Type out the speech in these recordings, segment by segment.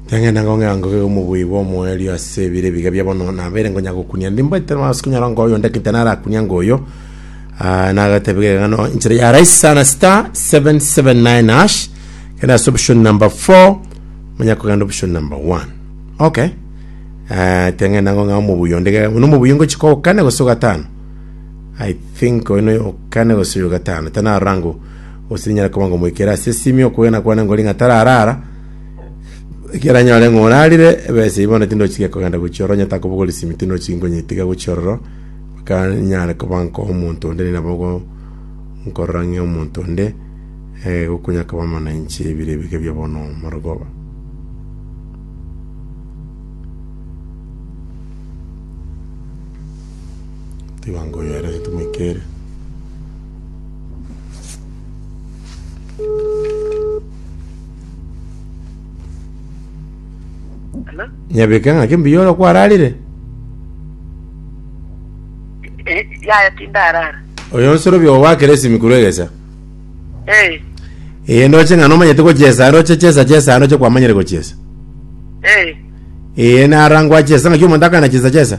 Tang'enda ngong'ea ngoge omobui bwa omoerio ase ebire ebiga bia bono nabere ngonya gokunia ndi mbaite masi kunyara ngo oyo ndekete narakunia ngo oyo Ah, nagatebega egano inchera ya rais sana star 779 hash kenda ase option number 4 manya kogenda option number 1 okay Ah, tang'enda ngong'ea omobui ondege uno omobui ngochika okane gose ogatano I think oyuno okane gose oyo gatano tana rangu Gose ninyare koba ngomoikere ase esimi okwegena kwane ngori ng'a tararara, ekiagera nyore ng'a orarire, ebesa eyio bono tindochikia kogenda gochia ororo, onye takobogora esimi tindochikia nkonyeitiga gochia ororo, mpaka ninyare koba nkoa omonto onde nigo nabo ogo nkorora ng'a omonto onde eh, igo konya koba amananchi ebire ebike bia bono marogoba. Tiga ngoyere tomoikere. Hello? Nyabeke ng'ake mbuya ore kwararire. Eh, yaya tindarara. Oyo nsorobia obo wakera esimi korwa egesa. Eh, Ee, ndoche ng'a nomanyete gochesa, ndoche chesa chesa, ndoche kwamanyire gochesa. eh, Ee, narangwa chesa ng'aki omonto akana chesa chesa.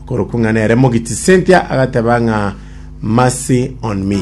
Korokwo ng'a nere mogiti, Cynthia agateba ng'a mercy on me.